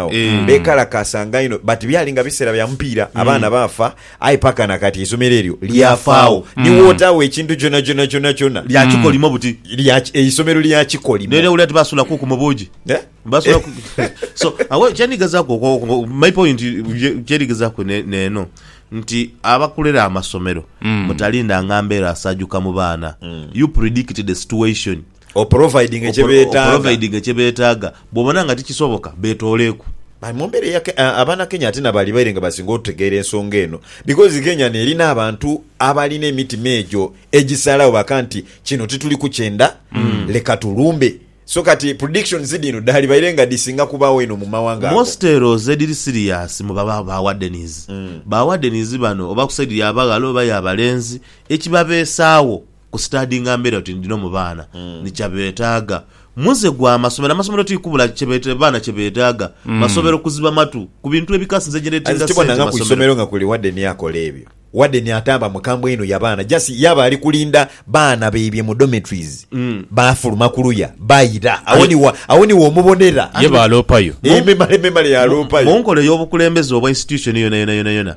agho beekalakaasanga inho but byali nga biseera bya mupiira abaana baafa aye paka na kati eisomero eryo lyafaagho ni wootagho ekintu kyonakyona kyonakyona Lya kikolimo buti. lya ki- eisomero lya kikolimo N'era owulira nti basula kuku mu buugi. Eh? Basula ku- So, awo kyendigezaaku okwo- okwo- my point ye- kyendigezaaku ne- n'eno nti abakulira amasomero mutalindanga mbeera asaajuka mu baana. You predict the situation. Oporovayidinge kye beetaaga. Bw'obona nga tikisoboka, beetooleeku. Aye mu mbeera eya Kenya, Abanakenya ate na bali baire nga basinga otutegeera ensonga eno because Kenya n'eri n'abantu abalina emitima egyo egisalagho baka nti kino tituli kukyenda leka tulumbe. So kati predictions dhino dhalibaire nga dhisinga kubaawo eno mu mawanga ago. Most heroes edhiri serious mu baba ba Wardens. Ba Wardens bano oba ku side ya baghala oba ya balenzi, ekibabeesaagho Ku sitadinga mberi oti ndino mu baana ni kya betaaga. Muze gwa masomero, amasomero ti kubula kye bete baana kye betaaga. Masomero kuziba matu ku bintu ebikasi nze gye As netinga tibona sente nga ku masomero. isomero nga kuli wadeni akola ebyo. Wadeni atamba mukambwe inho ya baana just ye aba ali kulinda baana baibye mu dormitories bafuluma ku luya baira. Agho ni wa agho ni womubonera. Ye baaloopayo. Ememale memale yaloopayo. Mu nkola ey'obukulembeze obwa institution yona yona yona yona.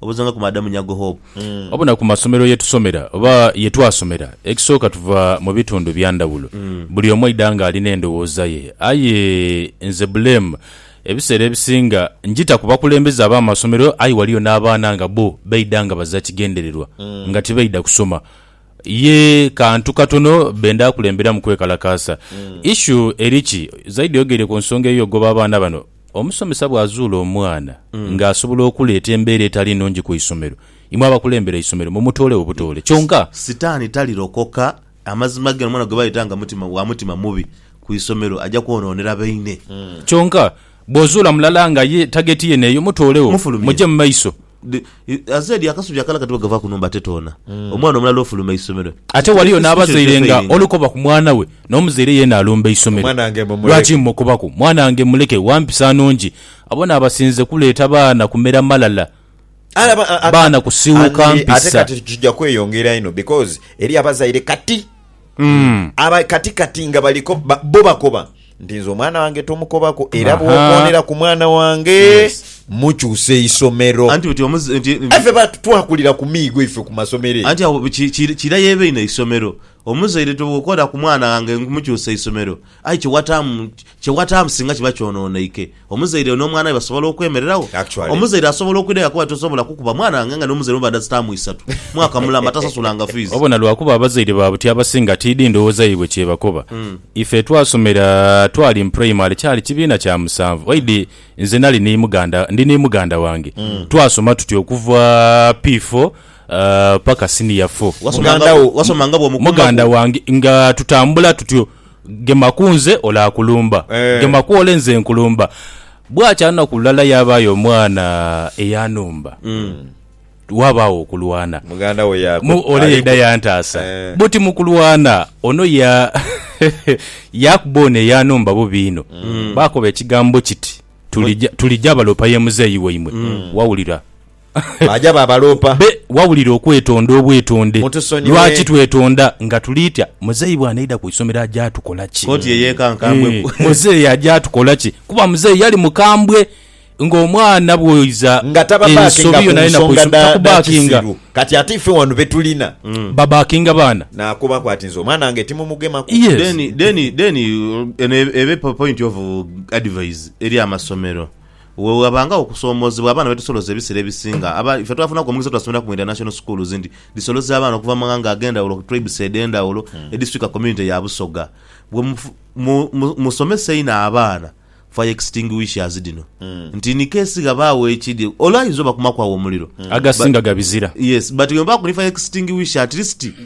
obuuza nga ku Madam Nyago Hope. Wabona ku masomero ye tusomera oba ye twasomera, ekisooka tuva mu bitundu bya ndhawulo, buli omu aidha nga alina endhowooza ye. Aye nze buleemu ebiseera ebisinga ngita ku bakulembeze ab'amasomero aye waliyo n'abaana nga bbo baidha nga baza kigendererwa nga tibaidha kusoma, ye kantu katono benda kulemberamu kwekalakaasa. Issue eri ki? Zaidi oyogeire ku nsonga ey'okugoba abaana bano. Omusomesa bw'azuula omwana ng'asobola okuleeta embeera etali nnungi ku isomero, imwe abakulembera eisomero mumutoolegho butoole. Kyonka. Sitaani talirokoka. Amazima gene, omwana gwe bayeta nga mutima, wa mutima mubi ku isomero aja kwonoonera baine. Kyonka bw'ozuula mulala nga ye tageti yene eyo, mutoolegho, Mufulumye. muje mu maiso. Azeedi akasubi akalala kati bwegava ku numba tetoona omwana omulala ofuluma eisomero. Ate waliyo n'abazaire nga oli koba ku mwana we n'omuzaire yeena alumba eisomero. Lwaki mukobaku mwanange muleke wa mpisa nnungi? Abo n'abasinze kuleeta baana kumera malala, baana kusiiwuka mpisa. Ate kati kija kweyongera inho because eriyo abazaire kati. Mm. aba kati kati nga baliko ba- bo bakoba nti nze omwana wange tomukobako era Aha. bwokoonera ku mwana wange Yes. mukyusa eisomero anti nti omuzi- nti- nti- efe ba- twakulira ku miigo ife ku masomero eyo. anti awo ki- ki- kira yeba ino isomero omuzaire tobwokola ku mwana wange nkumukyusa isomero Aye kye wataamu, kye wataamu singa kiba kyonooneike, omuzaire oyo n'omwana we basobola okwemererawo? Actually. Omuzaire asobola okwidha yakoba ati tosobola kukuba mwana wange nga n'omuzaire omubadha zitaamu isatu, mwaka mulamba tasasulanga fiizi. Obona lwakuba abazaire ba buti abasinga tiidhi ndhoghoza yaibwe kyebakoba. Ife twasomera twali mu primary kyali kibiina kya musanvu waidhi nze nali ni muganda, ndi ni muganda wange twasoma tuti okuva P4 paka senior four. Wasomanga Muganda wo, bwo, wasomanga bw'omukumba muganda gwo. wange nga tutambula tutyo Gema ku nze olaakulumba, gema ku ole nze nkulumba. Bwakya lunaku lulala yaabaayo omwana eyanumba. Waabaawo okulwana. Muganda we ya- Mu- Ole aliku- yaidha yantaasa. Eh. Buti mu kulwana, ono ya yaakuba ono eyanumba bubi inho. Baakoba ekigambo kiti, "Tulija- Tulija balopa ye muzeeyi waimwe. Wawulira? Baaja baabaloopa. Be wawulira okwetonda obwetonde. Mutusonyiwe. Lwaki twetonda nga tuli tya? Muzeeyi bw'anaidha ku isomero aja atukola ki? Koti ye yeeka nkambwe Eeh, ku. muzeeyi aja atukola ki? Kuba muzeeyi yali mukambwe ng'omwana bw'oiza Nga tababaakinga ensobi ku yonayona ku nsonga isomero. dha, dha Takubaakinga. kisiru. Kati ate ife wano be tulina. Babaakinga baana. Naakubaku ati, Nze omwana wange timumugemaku. Yes. Then, then, then, eno ebe point of advise eri amasomero. Bwe ghabangagho okusoomoozebwa abaana be tusoloza ebiseera ebisinga, aba ife twafunaku omukisa obutasomeraku mu International Schools nti dhisoloza abaana okuva mu maghanga ag'endhawulo, tribes edh'endhawulo, edhiswika community ya Busoga. Bwe mu, mu, mu, musomesa einho abaana fire extinguishers dhino nti in case ghabaagho ekidhi, olwo ayinza obakumaku agho omuliro. Agasinga gabizira. Yes, but bwe mubaaku ni fire extinguisher at least